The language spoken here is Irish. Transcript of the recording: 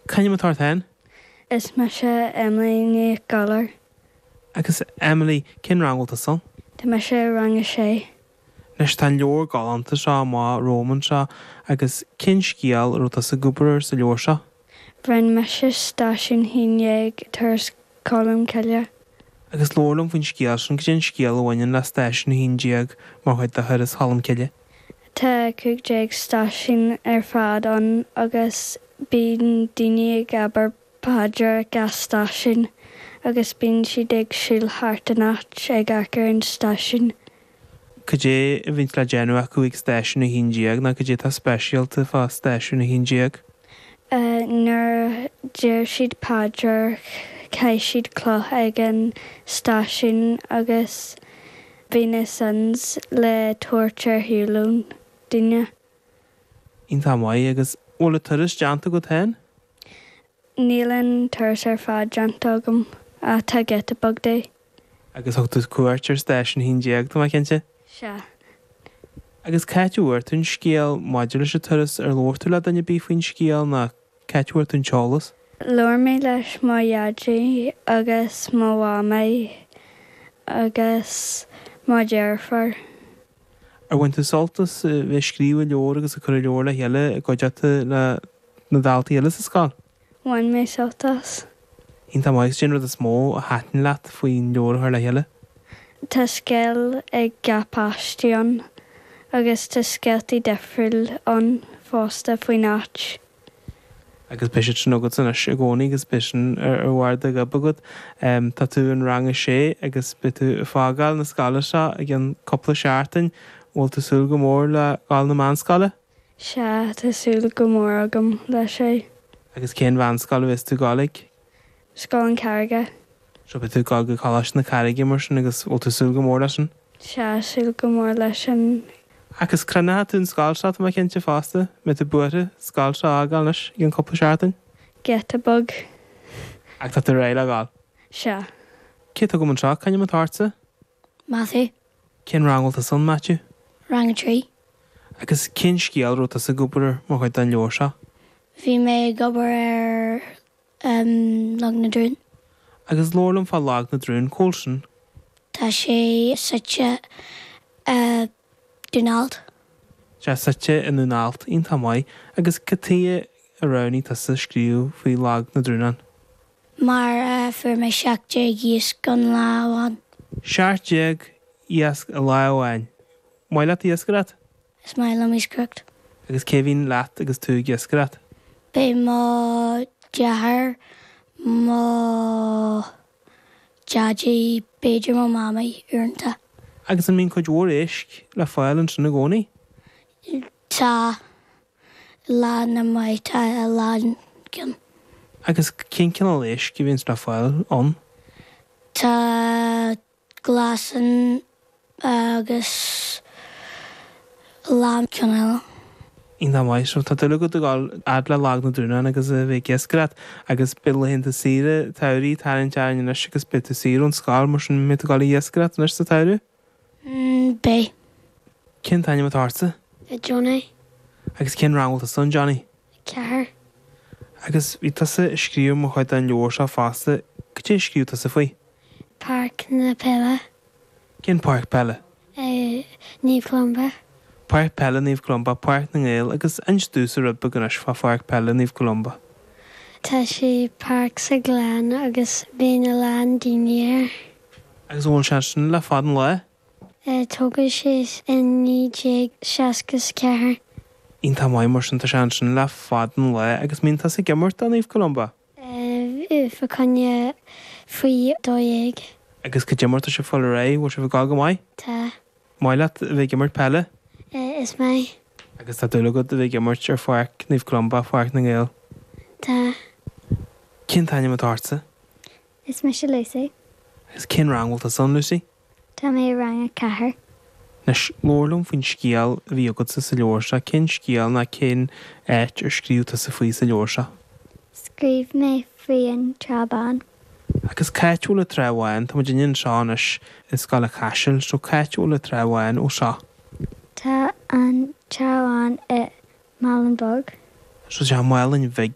C'ainm atá ort féin? Is mise Emily Ní Ghadhláir. Agus Emily, cén rang a bhfuil tusa ann? Tá mise i rang a sé. Anois, tá an leabhar galánta seo amuigh romham anseo agus cén scéal a raibh tusa ag obair air sa leabhar seo? Rinn mise stáisiún a haon déag Turas Cholm Cille. Agus labhair liom faoin scéal sin, cad é an scéal a bhaineann le stáisiún a haon déag mar chuid de Thuras Cholm Cille? Tá cúig déag stáisiún ar fad ann agus bíonn daoine ag abair paidir ag gach stáisiún agus bíonn siad ag siúl thart an áit ag amharc ar an stáisiún. Cad é a bhíonns le déanamh acu ag stáisiún a haon déag nó cad é atá speisialta fá stáisiún a haon déag? Nuair a deir siad paidir caith siad cloch ag an stáisiún agus bíonn na sins le tabhairt ar shiúl ón duine. Iontach maith. Agus an bhfuil an turas déanta agat féin? Níl an turas ar fad déanta agam ach tá giota beag de. Agus thug tú cuairt ar Stáisiún a hAon Déag, tá mé cinnte? Sea. Agus c'áit a bhfuair tú an scéal maidir leis an turas, ar labhair tú le duine ar bith faoin scéal nó c'áit a bhfuair tú an t-eolas? Labhair mé leis mo dhaidí agus mo mhamaí agus mo dheirfiúr. Ar bhain tú sult as bheith ag scríobh an leabhair agus ag cur an leabhar le chéile i gcuideachta le na daltaí eile sa scoil? Bhain mé sult as. Iontach maith. Cén rud is mó a thaitin leat faoin leabhar a chur le chéile? Tá scéal ag gach páiste ann agus tá scéaltaí difriúil ann fosta faoin áit. Agus beidh siad sin agatsa anois i gcónaí agus beidh siad ar bharr do ghoib agat. Tá tú in rang a sé agus beidh tú ag fágáil na scoile seo i gceann cúpla seachtain. An bhfuil tú ag súil go mór le dhul chun na meánscoile? Sea, tá súil go mór agam leis é. Agus cén mheánscoil a bhéas tú ag gabháil chuig? Scoil na Carraige. Sea, beidh tú ag dul go Coláiste na Carraige mar sin agus bhfuil tú ag súil go mór leis sin. Sea, súil go mór leis sin. Ach crothnóidh tú an scoil seo, tá mé cinnte fosta, mbeidh tú buartha scoil seo a fhágáil anois i gceann cúpla seachtain. Giota beag. Ach tá tú réidh le dhul? Sea. Cé atá agam anseo? C'ainm atá ortsa? Matthew. Cén rang bhfuil tusa ann, Matthew? Rang a trí. Agus cén scéal a raibh tusa ag obair ar mar chuid den leabhar seo? Bhí mé ag obair ar Log na dTrún. Agus labhair liom fá Log na dTrún, cá bhfuil sin. Tá sé suite i. Dún Alt. Tá sé suite i nDún Alt iontach maith agus cad tuighe a roghnaigh tusa scríobh faoi Lag na dTrúnán? mar fuair mé seacht déag iasc an lá amháin. Seacht déag iasc i lá amháin! Maith leat iascaireacht? Is maith liom iascaireacht. Agus cé bhíonn leat agus tú ag iascaireacht? Bíonn mo dheartháir, mo. Deaidí, b'fhéidir mo Mhamaí, uaireanta. Agus an mbíonn cuid mhór éisc le fáil ansin i gcónaí? Tá. Lá maith tá a lán ann. Agus cén cineál éisc a bhíonns le fáil ann? Tá glasán. agus a lán ceann eile. Iontach maith, is tá dúil agat a dhul fhad le Lag na dTrúnán agus a bheith ag iascaireacht, agus beidh laethanta saoire an tsamhraidh ag tarraingt orainn anois agus beidh tú saor ón scoil, mar sin an mbeidh tú ag dul ag iascaireacht anois sa tsamhradh? M, Beidh. Cén t-ainm atá ortsa? A, Johnny. Agus cén rang a bhfuil tusa ann, Johnny? A, Ceathair. Agus bhí tusa ag scríobh mar chuid den leabhar seo fosta, cad é a scríobh tusa faoi? A, Páirc na Peile. Cén páirc peile? Naomh Columba. Páirc Peile Naomh Columba, Páirc na nGael agus inis domhsa rud beag anois fá Pháirc Peile Naomh Columba. Tá sé páirc sa ghleann agus bíonn a lán daoine air. Agus an bhfuil sé ansin le fad an lae? Tógadh sé i 1964. Iontach maith mar sin, tá sé ansin le fada an lá agus an mbíonn tusa ag imirt do Naomh Columba! Bíonn fá choinne faoi dó dhéag. Agus cad é mar atá sibh ag fáil ar aghaidh? Bhfuil sibh ag gabháil go maith? Tá. maith leat a bheith ag imirt peile? Is maith. Agus tá dúil agat a bheith ag imirt ar pháirc Naomh Columba, páirc na nGael? Tá. Cén t-ainm atá ortsa? Is mise Lucy. Agus cén rang bhfuil tusa ann, Lucy? Tá mé i rang a ceathair. Anois, labhair liom faoin scéal a bhí agatsa sa leabhar seo. Cén scéal ná cén áit ar scríobh tusa faoi sa leabhar seo? Scríobh mé faoi an Trá Bhán. Agus c'áit a bhfuil an Trá Bhán? Tá muidinne anseo anois i Scoil an Chaisil, so c'áit a bhfuil an Trá Bhán ó seo? Tá an Trá Bhán i Málainn Bhig. So tá Málainn Bhig